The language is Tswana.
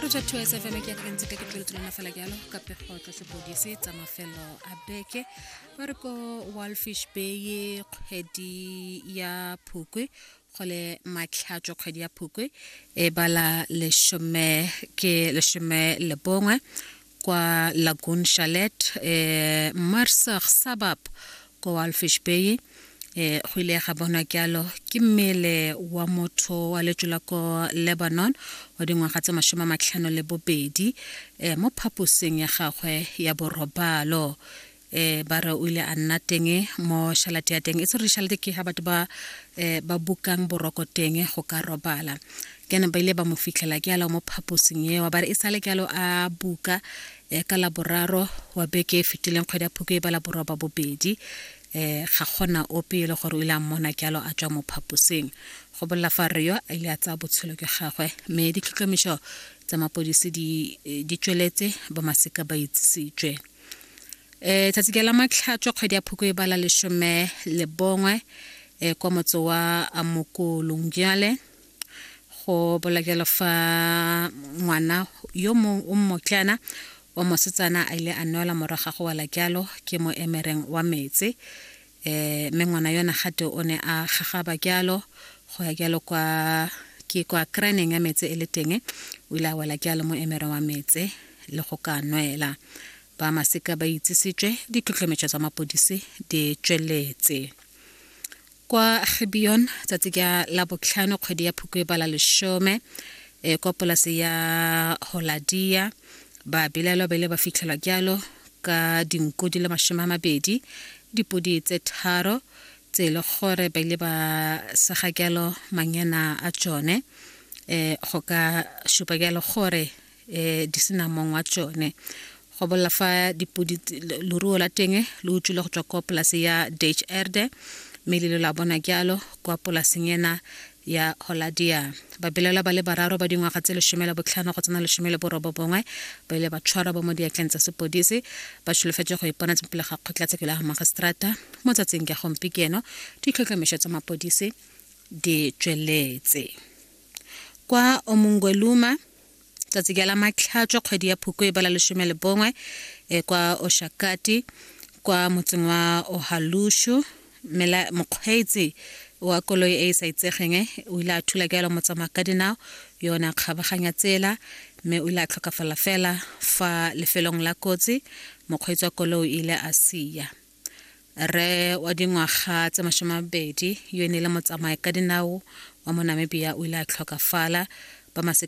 project wa sfm ke akgentse ka ke tlole tolana fela jalo ka pego tsa sepodise tsa mafelo a beke ba re ko walfish bay kgwedi ya phukwe gole matlhatso kgwedi ya phukwe e bala lesome ke lesome le bongwe kwa Lagoon Chalet eh, Marsach Sabab ko Walfish Bay eh, go ile ga bonwa kyalo ke mmele wa motho wa letso la ko lebanon wa dingwaga tse masome a matlhano le bobedi eh, mo phaposeng ya gagwe ya borobalo eh ba re o ile a nna teng mo shalate ya teng e se re shalate ke ha batho ba eh ba bukang boroko teng go ka robala ke ne ba ile ba mo fitlhela ke alo mo phaposing eo ba re e sale ke alo a buka eh ka la boraro wa beke e fetileng kgwedi ya phuko e ba la borwa ba bobedi eh ga gona ope e le gore o ile a mmona ke alo a tswa mo phaposing go bolla fa re yo a ile a tsaya botshelo ke gagwe mme ditlhotlhomišo tsa mapodisi di eh, di tsweletse ba masika ba itsisitswe e tsatsi ke la matlhatswa kgwedi ya phoko e bala lesome le bongwe e kwa motse wa amokolong jale go bola jalo fa ngwana yo mongwe o mmotlana wa mosetsana a ile a nwela morago ga go wela jalo ke mo emereng wa metse eh, mme ngwana yona gate o ne a gagaba kyalo go ya kyalo kwa ke kwa kraneng ya metse e le teng o ile a wela kyalo mo emere wa metse le go ka nwela ba maseka ba itsisitswe ditlhotlhometso tsa mapodisi di tsweletse kwa gibeon tsatsi ka la botlhano kgwedi ya phuko e bala lesome e kwa polase ya holadia ba bilelo bele ba fitlhelwa kyalo ka dinku di le masome a mabedi dipodi tse tharo tse e le gore ba ile ba sega jalo manyena a tsone um go ka supa jalo gore um di sena mong wa tsone go bolela fa dipodi leruo la teng le utswile go tswa kwa polase ya dage erde mme le lo la bona jalo kwa polaseng ena ya Holadia. Babelaelwa ba le bararo ba dingwaga tse lesome la botlhano go tsena lesome le borobobongwe ba ile ba tshwarwa ba mo diatleng tsa sepodisi ba tsholofetse go ipona tsepele ga kgotlatshekelo ya magistrata mo tsatsing ka gompikieno ditlhotlhomišo tsa mapodisi di tsweletse kwa omungweluma tsatsi ke la matlhatswa kgwedi ya phukwe e bala lesome le bongwe e kwa oshakati kwa motseng wa ohalushu mela mokgweetsi wa koloi e e sa itsegeng o ile a thula ke yalo motsamaya ka dinao yone a kgabaganya tsela mme o ile a tlhokafala fela fa lefelong la kotsi mokgweetsi wa koloi o ile a sia re wa dingwaga tse masome mabedi yo e ne e le motsamaya ka dinao wa monamibia o ile a tlhokafala ba